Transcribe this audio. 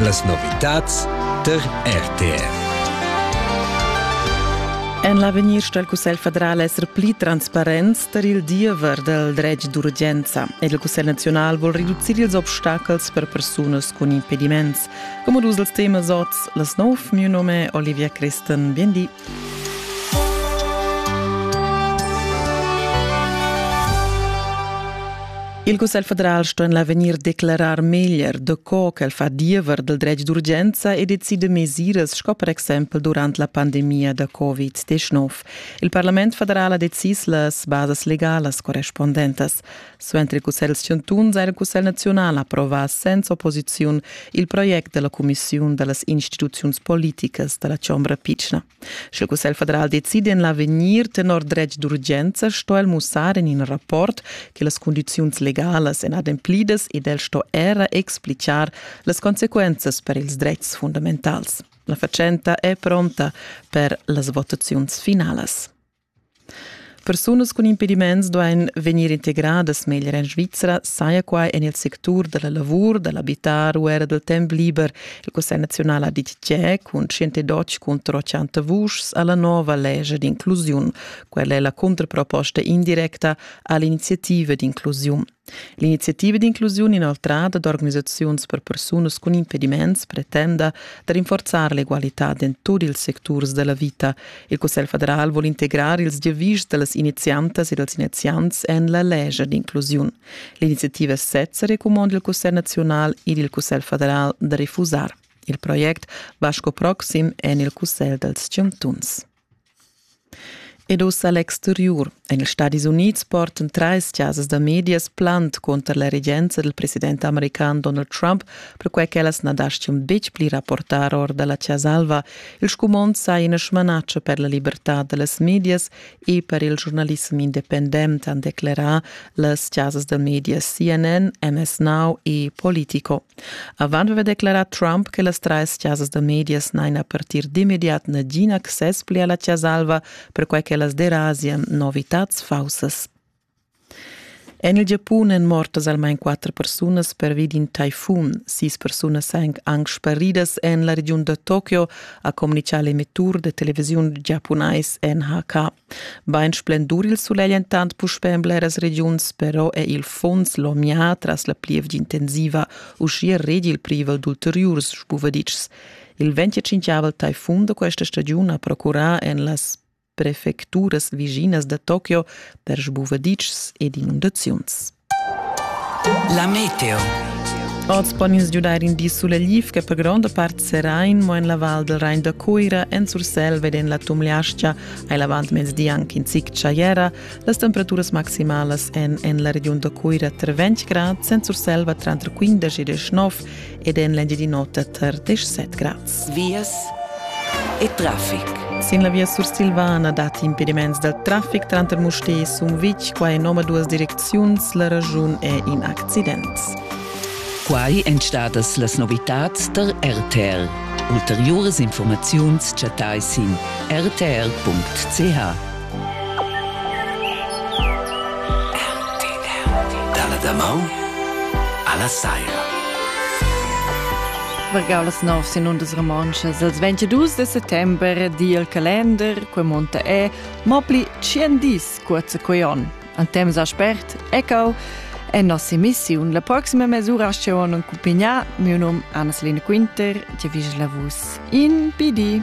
Las novitads tar RTR. En l'avegnir sto il Cussegl federal esser pli transparent tar il diever dal dretg d'urgenza ed il Cussegl naziunal vul reducir ils obstacels per persunas cun impediments. Come dus els temas oz, las nov, mio nome è Olivia Christen. Bien di. Il Cussegl federal sto en l'avegnir declarar meglier daco ch'el fa diever dal dretg d'urgenza e decide mesiras sco per exempel durant la pandemia da Covid-19. Il Parlament federal ha decis las basas legalas correspondentas. Suenter il Cussegl chantuns ha il Cussegl naziunal approvà senza opposiziun il project della Commissiun dallas instituziuns politicas dalla Chombra pitschna. Sch'il Cussegl federal decidi en l'avegnir tenor dretg d'urgenza, sto el mussar en in rapport che las condiziuns legalas èn ademplidas ed el sto era explicar las consequenzas per ils dretgs fundamentals. La fatschenta è pronta per las votaziuns finalas. Persunas cun impediments duain vegnir integradas meglier en Svizra, saja quai en il sectur da la lavur, da l'abitar u era dal temp liber. Il Cussegl naziunal ha ditg cun Sciente Deutsch contro chanta vuschs a la nova lescha d'inclusiun. Quella è la cuntraproposta indirecta a l'iniziativa d'inclusiun. L'iniziativa d'inclusiun inoltrada d'organisaziuns per persunas cun impediments pretenda da rinforzar l'egualitad en tut ils secturs della vita. Il Cussegl federal vuol integrar ils giavischs dellas iniziantas e dels iniziants en la legia d'inclusiun. L'iniziativa sezza recumanda il Cussegl nazional ed il Cussegl federal da refusar. Il project va sco proxim en il Cussegl dels chantuns. Ed ussa l'exteriur. En ils Stadis Unids portan trais chasas da medias plant conter la regenza dal president american Donald Trump, perquai ch'ellas na daschian betg pli rapportar or da la Chasa Alva. Il scumond sa ina smanatscha per la libertad da las medias e per il giurnalissem independent, han declerà las chasas da medias CNN, MS Now e Politico. Avant haver declarà Trump che las trais chasas da medias n'hain a partir d'immediat nagin access pli a la Chasa Alva, perquai ch'ellas derasian novitads faussas. En il Giapun èn mortas almain quatter persunas pervi d'in taifun. Sis persunas èn anc sparidas en la regiun da Tokio, ha communità l'emettur da televisiun giapunais NHK. Bain splendur il sulegl entant puspè en bleras regiuns, però è il funs lomià tras la plievgia intensiva uschia redi il privel d'ulteriurs spuvaditschs. Il 25 taifun da questa stagiun ha procurà en las prefecturas viginas da Tokio per sbuvaditschs ed inundaziuns. La meteo. Oz pon ins giudair in di sulegliv che per gronda part serà in mo en la val del Rain da Cuira, en Sursel ed en la Tumliascha, hai l'avantmezdi anche in zic tschaiera. Las temperaturas maximalas èn en la regiun da Cuira tra 20 grad, en Sursel va tranter 15 e 19 ed en l'Engiadin'Ota tar 17 grads. Vias e traffic. Sin la via sursilvana datti impediments dal traffic tranter Mustér e Sumvitg. Qua en omaduas direcziuns la raschun è in accident. Quai èn stadas las novitads tar RTL. Ulteriuras informaziuns chattai sin rtr.ch. Dalla damaun alla saira. Vargau las nov sin undas romontschas els 22 de settember di il calender, que monta è, mopli 100 dis cuorza quei on. An temps a spert, ecco, è nostra missione la prossima mesura asceon un cumpigna, mio num Anna-Selina Quinter, ti vis la vus in PD.